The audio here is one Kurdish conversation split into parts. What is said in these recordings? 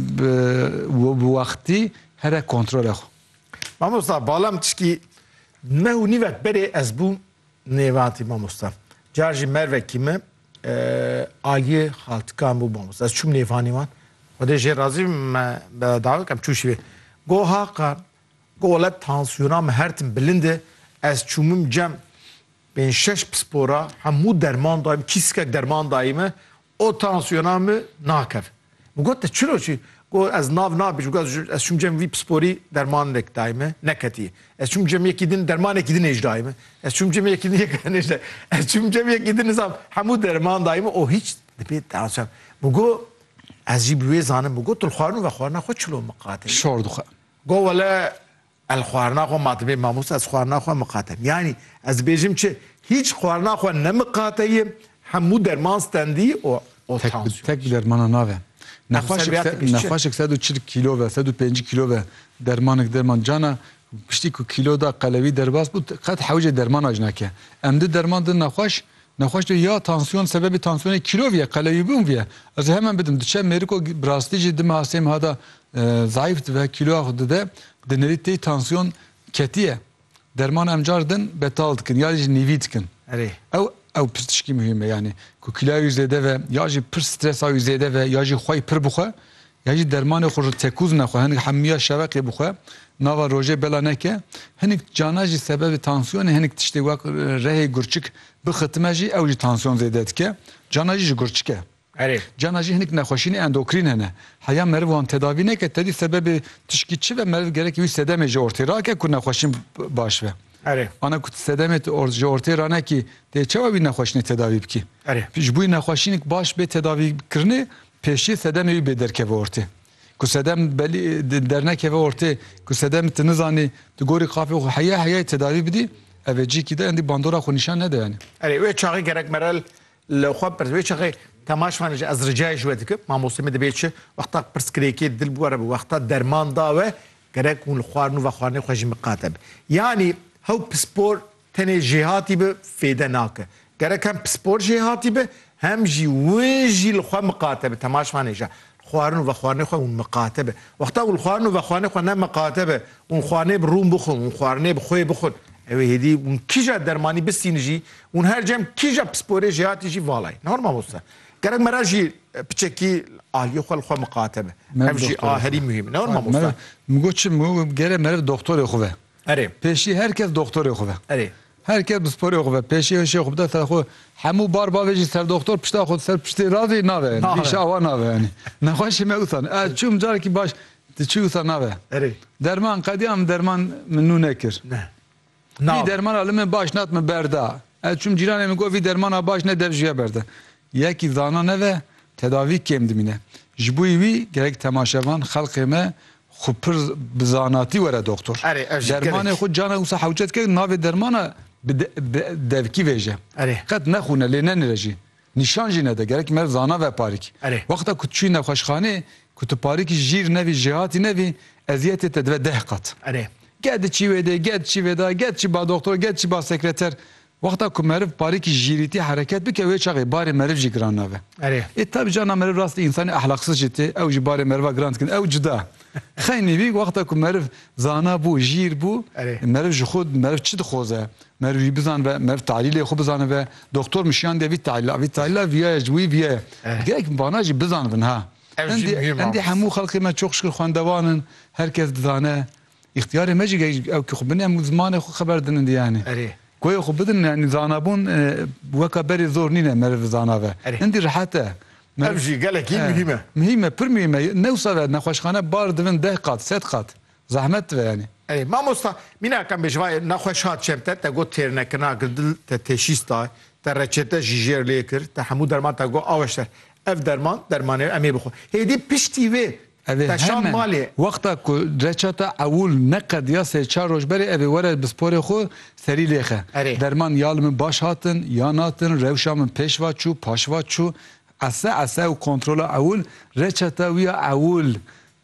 Bi bi wextî here kontrolê xwe. Mamosta bala min tişkî neh û nîvek berê ez bûm nêvatî mamosta. Car jî mervekî min aliyê xaltikan bû mamosta. Ez çûm nêvanî wan. Xwedê jê razî bim me bi dawet kem çû şîvê. Got Haqa got wele tansiyona min her tim bilind e. Ez çûmim cem pênc şeş pispora hemû derman dayîm kîskek derman dayî min O tansiyona min nakeve. Min got te çiro çi? Got ez nav nabij. Min got ez çûm cem vî pisporî dermanek dayê min, neketiye. Ez çûm cem yekî din dermanekî din êj dayê min. Ez çûm cem yekî din yek nêj dayê. Ez çûm cem yekî din nizam hemû derman dayê min û hîç dibê tansiyon. Min got ez jî bi wê zanim. Min got tu li xwarinû ve xwarina xwe çilo miqate. Şor dixwe. Got wele El xwarina xwe ma dibê mamoste ez xwarina xwe miqate yanî ez dibêjim çi hîç xwarina xwe ne miqate ye hemû derman stendî û û Tek bi tansiyon tek bi dermanan nave. Nexweşik se Nexweşik se pişt çi? nexweşik sed û çil kîlo ve, sed û pêncî kîlo ve dermanik dir man cana piştî ku kîlo da qelewî derbas bû qet hewcê derman ac nake. Em di derman din nexweş Nexweş de ya tansiyon sebebê tansiyonê kilo viye, qelewîbûn viye. Ez ê hemen bidim. Diçe mêriko bi rastî jî dima sê meha de zayîf dibe, kiloya xwe dide. Di nirî tê tansiyon ketiye. Derman em car din betal dikin ya jî nîvî dikin. Erê. Ew ew piştişkî muhîm e. Yanî ku kiloya wî zêde ve ya jî pir stresa wî zêde ve ya jî xwe yî pir bixwe Ya jî dermanê xwe ji tekûzina xwe hinik hemûya şeveqê bixwe nava rojê bela neke. Hinik cana jî sebebê tansiyonê hinik tiştê wek rehê gurçik bixitime jî ew jî tansiyon zêde dike. Cana jî ji gurçik e. Erê. Cana jî hinik nexweşînê endokrîn hene. Heya meriv wan tedavî neke tevî sebebê tişkî çi be meriv gerek wî sedemê ji ortê rake ku nexweşîn baş be. Erê. Ana ku tu sedemê ji ortê ranekî dê çawa wî nexweşînê tedavî bikî. Erê. Ji bo wî nexweşînik baş bê tedavî kirinê Pêşî sedemê wî bê derkeve ortê. Ku sedem belî dernekeve ortê, ku sedem tu nizanî, tu gorî qafê xwe heya heyayê tedavî bidî, ev ê cîkî de endî bandora xwe nîşan nede yanî. Erê wê çaxê gerek mere li xwe bipirsî, wê çaxê temaş me ji ez ricayê ji we dikim, mamosteyê me dibê çi wexta pirsgirêkê dil bi we re be, wexta derman da we, gerek hûn li xwarin û vexwarinê xwe jî miqate be. Yanî hew pispor Tenê jêhatî bi fêde nake. Gerek hem pispor jêhatî bi hem jî win jî li xwe miqate bi. Temaş manê ji xwarin û vexwarinê xwe hûn miqate bi. Wexta ku li xwarin û vexwarinê xwe ne miqate bi ûn xwarinê bi rûn bixwin ûn xwarinê bi xwê bixwin ewê hêdî hûn kîja dermanî bistîn jî hûn her cem kîja pisporê jêhatî jî vala ye. Nihor mamoste. Gerek mera jî piçekî aliyê xwe li xwe miqate bi. Ev jî a herî muhîm e. Nihor mamoste. Min got çi? Min got gerek mere bi doxtorê xwe ve. Erê. Pêşî her kes doxtorê xwe be. Erê. Her kes bi sporê xwe be. Pêşî hişê xwe bide ser xwe. Hemû bar bavê jî ser doxtor pişta xwe ser piştê radê nabe. Îşa awa nabe yanî. Nexweşê me wisa ne. Ez çûm carekî baş tu çi wisa nabe. Erê. Derman qediya min derman min nû nekir. Ne. Vî dermana li min baş nat min berda. Ez çûm cîranê min got vî dermana baş ne dev ji ya berda. Yekî zana nebe tedavî kêm dimîne. Ji bo wî gerek temaşevan, xelkê me xwe pir bi zanatî were doktor. Erê ev jî gelek. Dermanê xwe canek wisa hewce dike ku navê dermana bi bi devkî vêje. Erê. Qet nexwune lê nenire jî. Nîşan jî nede gerek meriv zana be parîk. Erê. Wexta ku tu çûyî nexweşxanê ku tu parîkî jîr nevî jêhatî nevî eziyetê te dibe deh qat. Erê. Geh diçî wê dê, geh diçî vê da, geh diçî ba doktor, geh diçî ba sekreter. Wexta ku meriv parêkî jîrîtî hereket bike wê çaxê barê meriv jî giran nabe. Erê. Ê tabi cana meriv rastî însanê ehlaksiz jî tê, ew jî barê meriva giran dikin. Ew cuda. Xeynî vî wexta ku meriv zana bû, jîr bû, Erê. meriv ji xwe meriv çi dixoze, meriv wî bizanibe, meriv tahlîlê xwe bizanibe, doktor min şiyan diye vî tahlîla, vî tahlîla vîyaye ji wî vîyaye. Erê. Gelek min vana jî bizanibin ha. Ev jî Endî, muhîm a. endî hemû xelkê me çoxşikir xwendevan in, her kes dizane. Îxtîyarê me jî gehîşt ew kî xwe binin em zimanê xwe xeber dinin dê yanî. Erê. Goyê xwe bidin yanî zanabûn weka berê zor nîn e meriv zanabe. Erê. Hindî rihet e. Ev jî gelekî muhîm e. Muhîm e, pir muhîm e. Ne wisa ve nexweşxane bar divin deh qat, sed qat. Zehmet dive yanî. Erê. Mamosta mînak em bêje vayê nexweşa çem te, te got têrnekirina kir dil, te teşîs da, te reçete jî jêr lê kir, te hemû derman te got aweşter. Ev derman, dermanê em ê bixwe. Hêdî piştî wê Ev ê hemen wexta ku reça te ewûl neqediya sê çar roj berê ev ê were bi sporê xwe serî lêxe. Derman ya li min baş hatin ya natin, rewşa min pêş va çû, paş va çû. Ese ese û kontrola ewûl reça te wîya ewûl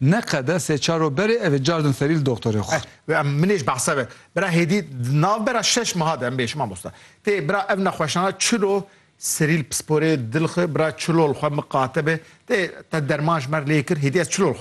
neqede sê çar roj berê ev ê car din serî li doxtorê xwe. Min ê ji behsa ve bira hêdî di navbera şeş meha de em bê ji mamosta tê bira ev nexweşana çilo Serîl pisporê dil xwe bira çilol xwe miqate be, te te derman ji mer lê kir, hêdî ez çilol xwe